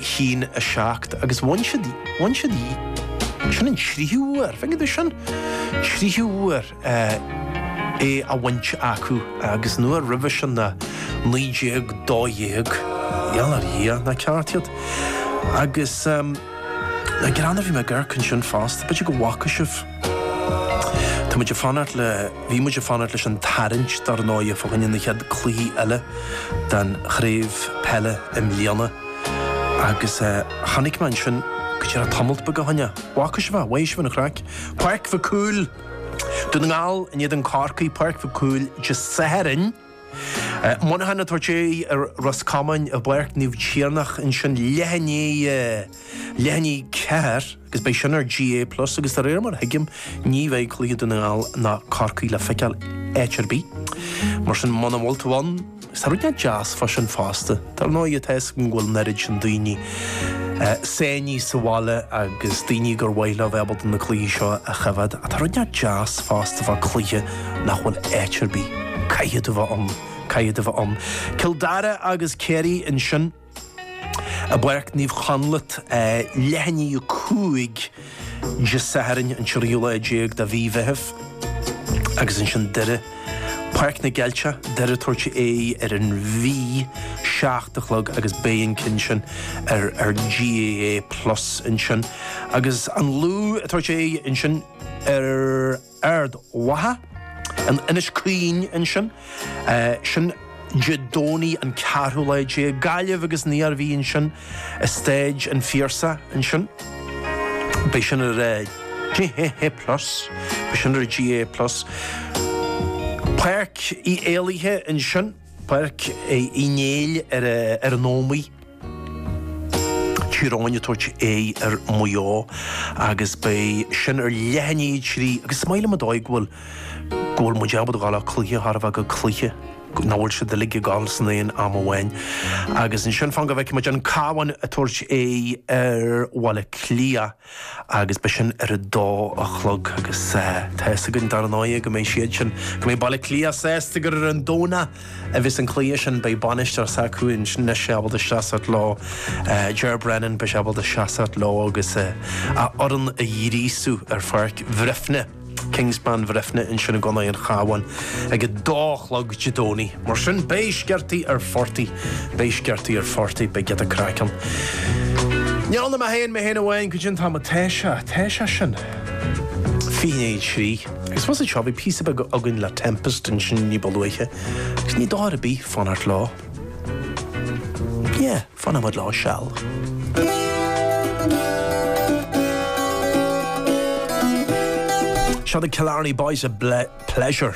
Chinn 7 agus bhain siad, bhain siad í, sin an tríú uair, bheinn ag dul sin, tríú uair é a bhaint acu agus an uair roimhe sin ná 1912, gheall ar Dhia ná ceart iad. Agus ná greann a bhí mé ag amharc ansin fosta, b'fhéidir go bhfaca sibh, tá muid ag fanacht le, bhí muid ag fanacht leis an tarraingt, dar ndóigh, fá choinne na chéad chluichí eile den chraobh peile i mbliana. Agus tháinig mé ansin go díreach tamalt beag ó shin, an bhfaca sibh, a bhfaighidh sibh an chraic. Páirc Mhic Cumhaill, Dún na nGall in éadan Corcaí, Páirc Mhic Cumhaill, Dé Sathairn. Muineachán ag tabhairt aghaidh ar Ros Comáin i bPáirc Naomh Tiarnach ansin leath i ndiaidh leath i ndiaidh a ceathair agus beidh sin ar GAA plus agus de réir mar a thuigim ní bheidh cluiche Dún na nGall ná Corcaigh le feiceáil áit ar bith. Mar sin muna bhfuil tú ann, Tá rud inteacht deas fá sin fosta, dar ndóigh, tá 'fhios agam go bhfuil an oiread sin daoine sáinnithe sa bhaile agus daoine gur mhaith leo a bheith ábalta na cluichí seo a choimheád ach tá rud inteacht deas fosta fá cluiche nach bhfuil áit ar bith, caithfidh tú bheith ann, caithfidh tú bheith ann. Cill Dara agus Ciarraí ansin. I bPáirc Naomh Chonlaith, leath i ndiaidh a 5, Dé Sathairn an tríú lá déag de mhí Mheithimh agus ansin Doire, Páirc na gCeilteach, Doire ag tabhairt aghaidh ar an Mhí, seacht a chlog agus beidh an ceann sin ar GAA plus ansin agus an Lú ag tabhairt aghaidh ansin ar. Ard Mhacha, in Inis Caoin ansin, sin Dé Domhnaigh an 14 lá, Gaillimh agus an Iarmhí ansin i Staid an Phiarsaigh ansin. Beidh sin ar rté plus, beidh sin ar GAA plus. Páirc Uí Éalaithe ansin, Páirc Uí Néill ar an Ómaigh. Tír Eoghain ag tabhairt aghaidh ar Mhaigh Eo agus beidh sin ar leath i ndiaidh a 3 agus is maith liom an dóigh go bhfuil go bhfuil muid ábalta a ghabháil ó chluiche thar a bheith go cluiche nach bhfuil siad uilig ag dul san aon am amháin agus ansin fan go bhfeicfidh muid an Cabhán ag tabhairt aghaidh ar Bhaile Átha Cliath agus beidh sin ar a dó a chlog agus tá a fhios againn dar ndóigh go mbeidh siad sin, go mbeidh Baile Átha Cliath sásta gur ar an Domhnach a bheas an cluiche sin, beidh bainisteoir s'acu ansin, beidh sé ábalta seasamh leo, Ger Brennan, beidh sé ábalta seasamh leo agus a fhoireann a ghríosú ar pháirc Bhreifne. Kingspan Bhreifne ansin i gContae an Chabháin ag a dó a chlog Dé Domhnaigh. Mar sin, beidh sciortaí ar phortaigh, beidh sciortaí ar phortaigh, beidh giota craic ann. Ndearna mé féin mé féin amháin cad é an t-am atá sé, tá sé sin. Fiche i ndiaidh a trí. Agus más ag seo, bhí píosa beag againn le Tempest ansin ní ba luaithe, agus ní dochar ar bith fanacht leo. Yeah, fanfaidh muid leo seal. Seo The Killarney Boys of Pleasure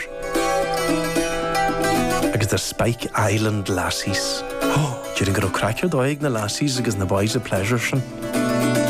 agus The Spike Island Lassies. Oh, déarfainn go raibh craic ar dóigh ag na lassies agus na boys of pleasure sin.